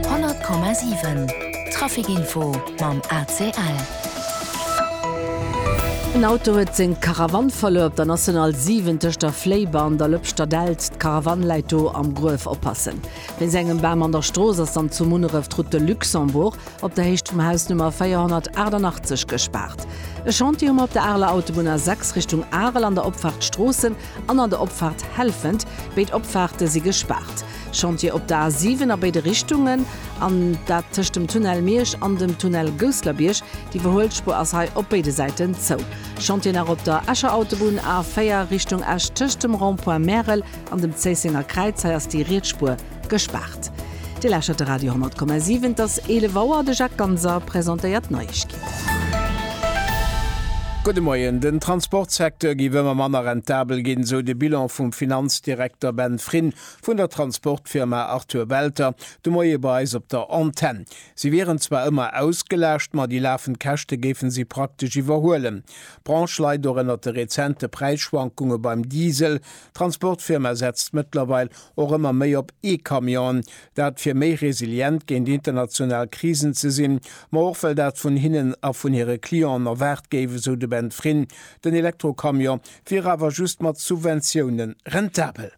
100,7 Trafic Info mam ACL. En Auto huet seng Karavann verluer op der National 7 tëscht der Fléiber an der Lëpschter Delt. D'Karavann läit do am Gruef. Oppassen! Wéinst engem Bam an der Strooss ass dann zu Munneref d'Route de Luxembourg op der Héicht vum Haus Nummer 488 gespaart. E Chantier hu mer op der Areler Autobunn A6 Richtung Arel an der Opfaart Stroossen an an der Opfaart Helfent. Béid Opfaarte si gespaart. Chantier op der A 7 a béide Richtungen, an dat tëscht dem Tunnel Miersch an dem Tunnel Gousslerbierg. D'Iwwerhuelspur ass hei op béide Säiten zou. Chantier nach op der Escher Autobunn, A 4 Richtung Esch, tëscht dem Rond-point Märel an dem Zéissenger Kräiz. Hei ass déi riets Spur gespaart. Dir lauschtert de Radio 10,7. Et ass 11 Auer. De Jacques Ganser presentéiert d'Neiegkeeten. Gudde Moien. Den Transportsecteur géif ëmmer manner rentabel ginn, esou de Bilan vum Finanzdirekter Ben Frin. Vun der Transportfirma Arthur Welter de Moie bei eis op der Antenn. Si wieren zwar ëmmer ausgelaascht, ma déi lafend Käschte géife si praktesch iwwerhuelen. D'Branche leit och ënnert de rezente Präisschwankunge beim Diesel. D'Transportfirma setzt mëttlerweil och ëmmer méi op E-Camionen. Dat fir méi resilient géint international Krisen ze sinn, ma och well dat vun hinnen a vun hire Clienten erwaart géif, esou de Ben Frin. Den Elektrocamion wier awer just mat Subventioune rentabel.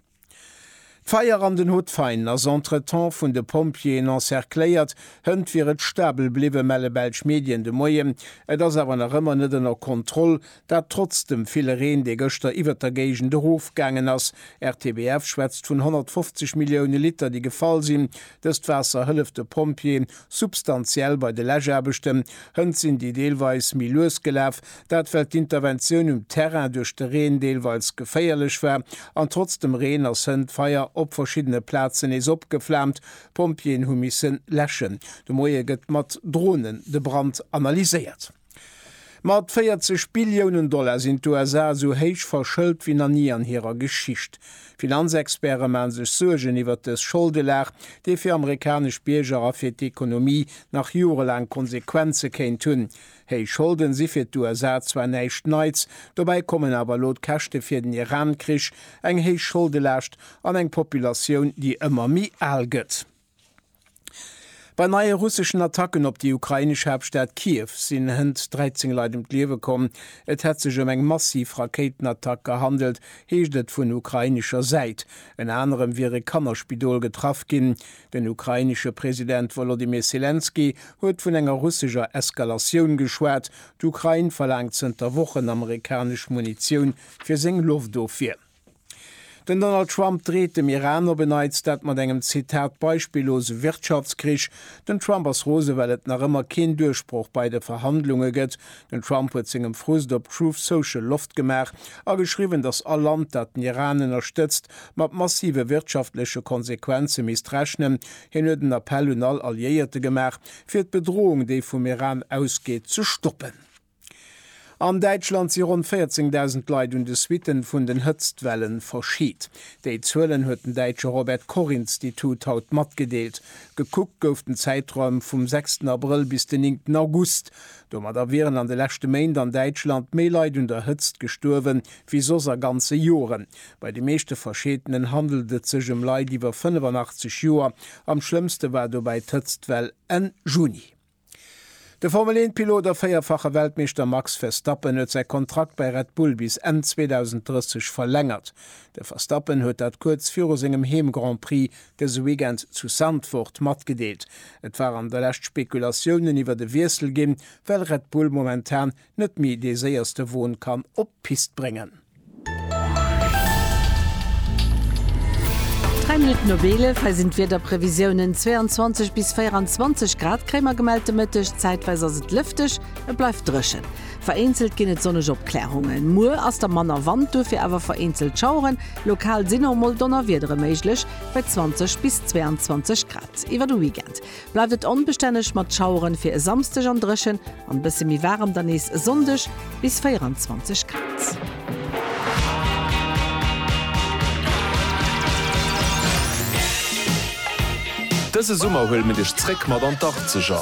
D'Feier an den Hutvein ass entretemps vun de Pompjeeën encercléiert hënt wier et stabel bliwwen, melle belsch Medien de Moien. Et ass awer nach ëmmer net ënner Kontroll, dat trotz dem ville Reen, dee gëschter iwwert der Géigend erofgaangen ass. RTBF schwätzt vun 150 Millioune Liter, déi gefall sinn. Dëst Waasser hëlleft de Pompjeeë substantiell bei de Läschaarbechten. Hënt sinn déi deelweis méi lues gelaf, Dat well d'Interventioun um Terrain duerch de Reen deelweils geféierlech war an trotz dem Reen ass hënt d'Feier op verschiddene Plazen nees opgeflaamt. D'Pompjeeën hu missen läschen. De Moie gëtt mat Dronen de Brand analyséiert. Mat 40 Billiounen Dollar sinn d'USA esou héich verschëlt wéi nach ni an hirer Geschicht. Finanzexperte maen sech Suergen iwwert dës Scholdelag, déi fir amerikanesch Bierger a fir d'Ekonomie nach jorelaang Konsequenze kéint hunn. Héich Scholden si fir d'USA zwar näischt Neits, dobäi kommen awer elo d'Käschte fir den Iran-Krich, eng héich Scholdelaascht an eng Populatioun, déi ëmmer méi al gëtt. Bei neie russeschen Attacken op déi ukrainesch Haaptstad Kiew sinn hënt 13 Leit ëm d'Liewe komm. Et hätt sech ëm eng massiv Rakéitenattack gehandelt, heescht et vun ukrainescher Säit. Ënner anerem wiere Kannerspidol getraff ginn. Den ukrainesche President Wolodymyr Selenskyj huet vun enger russeger Eskalatioun geschwat. D'Ukrain verlaangt zënter Wochen amerikanesch Munitioun fir seng Loftofwier. Den Donald Trump dreet dem Iran op en Neits, dat mat engem Zitat beispillose Wirtschaftskrich. Den Trump ass rose well et nach ëmmer keen Duerchbroch bei de Verhandlunge gëtt. Den Trump huet sengem Frust op Truth Social Loft gemaach a geschriwwen, datt all Land, dat den Iran ënnerstëtzt, mat massive wirtschaftleche Konsequenze misst rechnen. Hien huet en Appell un all Alliéierte gemaach, fir d'Bedroung, déi vum Iran ausgeet, ze stoppen. An Däitschland si ronn 14.000 Leit un de Suitten vun den Hëtztwelle verscheet. Déi Zuelen huet den däitsche Robert Koch Institut haut matgedeelt. Gekuckt gouf den Zäitraum vum sechsten Abrëll bis den néngten August. Domadder wieren an de leschte Méint an Däitschland méi Leit un der Hëtzt gestuerwe wéi soss a ganze Joren. Bei de meeschte Verscheetenen handelt et sech ëm Leit iwwer 85 Joer. Am schlëmmste war dobäi d'Hëtztwell Enn Juni. De Formel-Eent-Pilot a véierfache Weltmeeschter Max Verstappen huet säi Kontrakt bei Red Bull bis Enn 2030 verlängert. De Verstappen huet dat kuerz viru sengem Heem-Grand-Prix dëse Weekend zu Zandvoort matgedeelt. Et waren der lescht Spekulatiounen iwwert e Wiessel ginn, well Red Bull momentan net méi dee séierste Won kann op d'Pist bréngen. 3 Minutten op 11, hei sinn d'Wiederprevisiounen, 22 bis 24 Grad kréie mer gemellt de Mëtteg, zäitweis ass et lëfteg, et bleift dréchen. Vereenzelt ginn et sonneg Opklärungen. Muer ass da manner Wand, duerfir awer vereenzelt Schaueren. Lokal sinn och mol Donnerwiedere méiglech, bei 20 bis 22 Grad. Iwwer de Weekend bleift et onbestänneg mat Schaueren, fir e Samsdeg an dréchen an bësse méi waarem dann nees e Sonndeg, bis 24 Grad. Dëse Summer huele mir dech zréck mat an d'Arkzeger!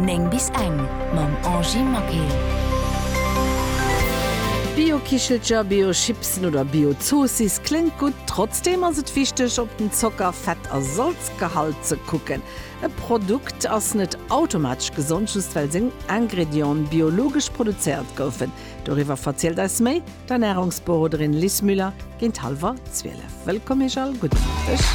9 bis eng mam Angie Maquet. Bio-Kichelcher, Bio-Chipsen oder Bio-Zoossiss kléngt gutt, trotzdeem ass et wichteg op den Zocker-, Fett a Salzgehalt ze kucken. E Produkt ass net automatesch gesond just well seng Ingredienten biologesch produzéiert goufen. Doriwwer verzielt eis méi d'Ernärungsberoderin Liz Müller géint hallwer 12. Wëllkomm iech all, gudden Appetit!